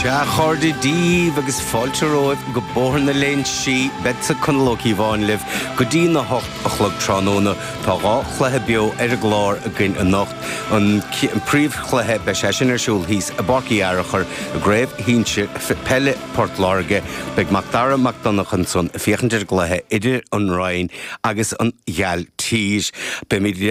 Sea, a chairde, díbh agus fáilte romhaibh go Bóthar na Léinsí, beadsa, Conall Ó Cíobháin, libh go dtín a hocht a chlog tráthnóna. Tá dhá chluiche beo ar an gclár againn anocht. An príomhchluiche, beidh sé sin ar siúl thíos i bPáirc Uí Fhearachair i gCraobh Shinsir Peile Port Láirge. Beidh Mac Dara Mac Donncha ansan ag féachaint ar an gcluiche idir An Rinn agus An Ghailltír. Beimid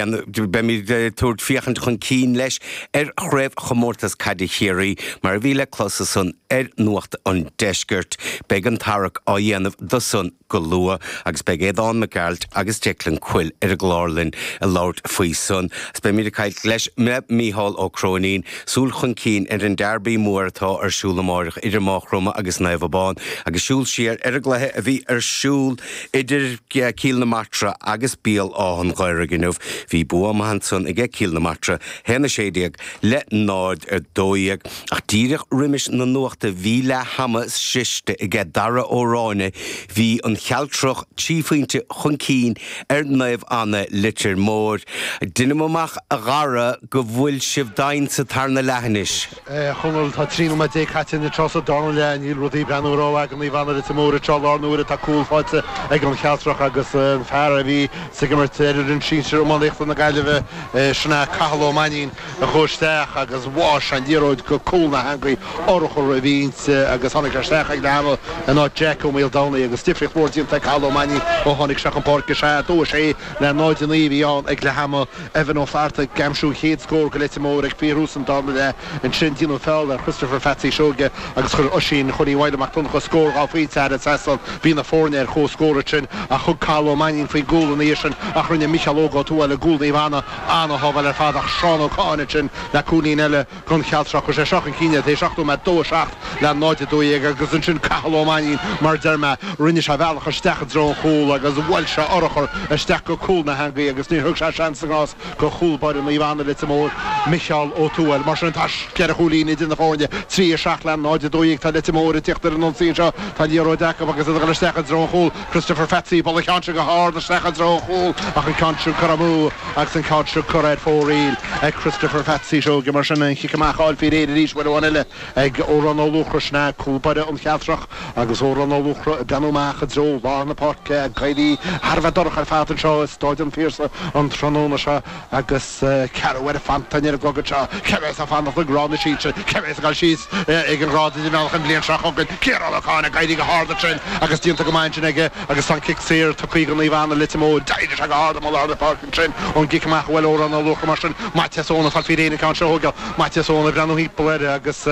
ag tabhairt féachaint chun cinn leis ar Chraobhchomórtas Caide Chiarraí, mar a bhí le clos ansan ar Nuacht an Deiscirt. Beidh an tarrac á dhéanamh dó san go luath agus beidh Aodhán Mac Gearailt agus Declan Quill ar an gclár linn ag labhairt faoi san. Beimid ag caint leis le Micheál Ó Cróinín, súil chun cinn ar an dearbaí mór atá ar siúl amáireach idir Maigh Chromtha agus Naomh Abán agus súil siar ar an gcluiche a bhí ar siúl idir Cill na Martra agus Béal Átha'n Ghaorthaidh inniu. Bhí bua maith ansan aige Cill na Martra. 1, 16, le 0, 12, ach díreach roimis na Nuachta bhí leath ama sroiste aige Dara Ó Ráinne bhí an Chealtrach trí phointe chun cinn ar Naomh Anna Leitir Móir. Deinim amach a Dhara go bhfuil sibh doimhin sa tarna leath anois. A Chonaill, tá trí nóiméad déag caite an tráth seo sa darna leath. Níl rudaí ag breathnú rómhaith ag Naomh Anna Leitir Móir anseo i láthair na huaire, tá cúl faighte ag an Chealtrach agus an fear a bhíonns ag imirt ar fhoireann sinsir iománaíochta na Gaillimhe sin Cathal Ó Mainnín a chuaigh isteach agus bhuail sé an liathróid go cúl na heangaí urchar a bhí inti agus tháinig sé isteach ag leathama in áit Jack Ó Maoldomhnaigh agus difríocht mhór déanta ag Cathal Ó Mainnín ó tháinig sé chun páirce, 2-6 le 0-9 a bhí ann ag leathama. Evan Ó Flathartaigh, ag aimsiú an chéad scór do Leitir Móir ag fíorthús an darna leath, ansin déanadh feall ar Christopher Phatsy Seoige agus chuir Oisín Chóilín Mhaidhc Mac Donncha scór dhá phointe thar an trasnán. Bhí na foirne ar chomhscór ansin ach thug Cathal Ó Mainnín faoin gcúl ina dhiaidh sin ach rinne Micheál Óg Ó Tuathail, i gcúl Naomh Anna, an-shábháil ar fad ach Seán Ó Catháin ansin le cúilín eile. don Chealtrach. Chuir sé seo chun cinn iad, tar éis seacht nóiméad, 2, 7 le 0, 12, agus ansin Cathal Ó Mainnín, mar a deir mé, rinne sé a bhealach isteach i dtreo an chúil agus bhuail sé urchar isteach go cúl na heangaí agus níor thug sé seans na ngrást do chúl báire Naomh Anna Leitir Móir, Micheál Ó Tuathail. Mar sin tá ceithre chúilín idir na foirne, 3, 7 le 0, 12. Tá Leitir Móir ag tíocht ar an ionsaí anseo, tá an liathróid acu agus iad ag dul isteach i dtreo an chúl. Christopher Phatsy ag bualadh an ceann seo go hard isteach i dtreo a chúil ach an ceann seo curtha amú agus an ceann seo curtha ar fóraoil ag Christopher Phatsy Seoige. Mar sin an chic amach á fháil faoi réir arís uair amháin eile ag Odhrán Ó Luachra. Sin é cúl báire an Chealtrach agus Odhrán Ó Luachra ag breathnú amach i dtreo lár na páirce ag éirí thar a bheith dorcha ar fad anseo i Stáid an Phiarsaigh an tráthnóna seo. agus ceathramh ar a phantáin ar an gcogadh seo, cé a bheas ag fanacht i ngrád na sinsear, cé a bheas ag dul síos ag an ngrád idirmheánach an bhliain seo chugainn. Ciarán Ó Catháin ag éirí go hard ansin agus déanta go maith ansin aige agus tá an cic saor tugtha ag Naomh Anna Leitir Móir. D'éirigh sé go hard amuigh i lár na páirce ansin ón gcic amach a bhuail Odhrán Ó Luachra mar sin. Maitias Eoin atá faoi réir an ceann seo a thóigeáil Maitias Eoin ag breathnú thimpeall air agus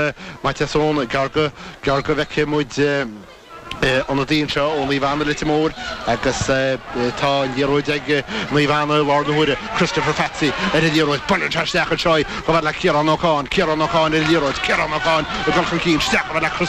Maitias Eoin gearr go bhfeicfidh muid Ionadaí anseo ó Naomh Anna, Leitir Móir agus tá an liathróid ag Naomh Anna i láthair na huaire. Christopher Phatsy ar an liathróid, buaileann isteach anseo í, chomh fhad le Ciarán Ó Catháin, Ciarán Ó Catháin ar an liathróid, Ciarán Ó Catháin ag dul chun cinn, isteach chomh fhad le Christopher.